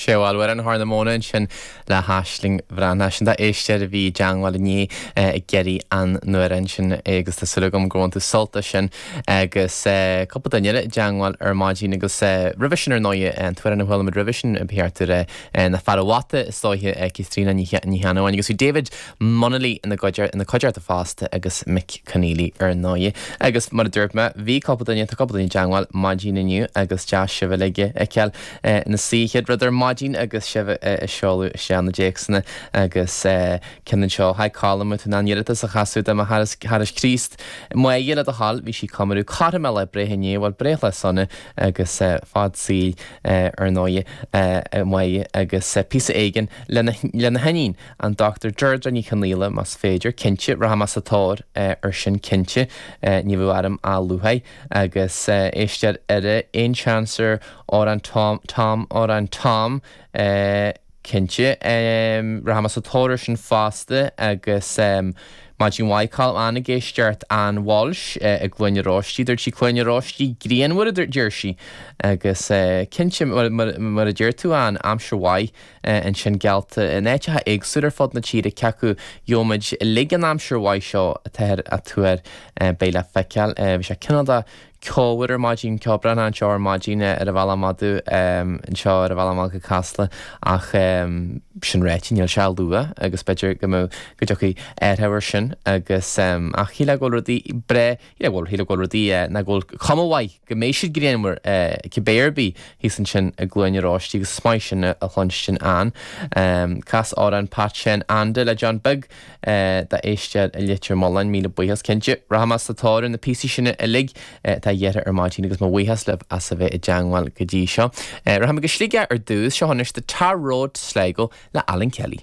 Sheol Warren thar na móna ansin le haisling bhreá. ansin d'éisteoir a bhí i dteangmháil inné ag iarraidh an amhráin sin agus tá súil agam gur bhain tú sult as sin agus cúpla duine eile i dteangmháil ar maidin agus roimhe sin ar ndóigh an t-uair arna bhfuilimid roimhe sin ba cheart ar na fearaibh bhata is dóiche Caitríona Ní Cheannabháin agus bhí David Munnelly ina gcuidearta fosta agus Mick Conneely ar ndóigh. Agus mar a dúirt mé, bhí cúpla duine, tá cúpla duine i dteangmháil maidin inniu agus deas sibh uilig a fheiceáil ina suí chéad rud ar maidin agus sibh ag seoladh isteach na dtéacsanna agus ceann anseo. Hi Colm, bhfuil tú in ann iarratas a chasadh do mo charas Críost? Maye, le do thoil, bhí sí ag comóradh cothrom a lae breithe inné, bhuel breithlá sona agus fad saoil ar ndóigh a Mhaye agus píosa éigin lena hiníon. An Dr. Deirdre Ní Chonghaile Más féidir, cinnte, rachaimid sa tóir ar sin cinnte, ní raibh ainm luaite agus éisteoir eile aon seans ar Amhrán Tom Tom Amhrán Tom cinnte, rachaimid sa tóir ar sin fosta agus maidin mhaith Colm ag éisteacht Ann Walsh i gCluain Róistí, dúirt sí Cluain Róistí grianmhar a deir sí agus cinnte mar a deir tú Ann, aimsir mhaith. ansin geallta in áiteacha éagsúla ar fud na tíre cé acu gheobhaimid uilig an aimsir mhaith seo atáthar ag tuar. Beidh le feiceáil. Bhí sé cineál de ceomhar ar maidin, ceo breá anseo ar maidin ar an bhealach aduaidh, anseo ar an bhealach amach go Casla ach sin ráite níl sé ach luath agus b'fhéidir go dtiocfaidh athruithe air sin agus ach shílfeá go bhfuil rudaí breá Yeah, bhuel, shílfeá go bhfuil rudaí, eh, nach bhfuil cuma mhaith go mbeidh siad grianmhar, eh, cibé ar bith, thíos ansin i gCluain Róistí agus is maith sin a chluinstin Ann. Em, cas amhrán Pat Sheáin Anda le John Beag, eh, d'éisteoir i Leitir Mealláin, míle buíochas, cinnte. Rachaimid sa tóir ar na píosaí sin uilig, eh, atá iarrtha ar maidin agus mo bhuíochas libh as a bheith i dteangmháil go dtí seo. Eh, rachaimid go Sligeach ar dtús, seo anois The Tar Road to Sligo le Alan Kelly.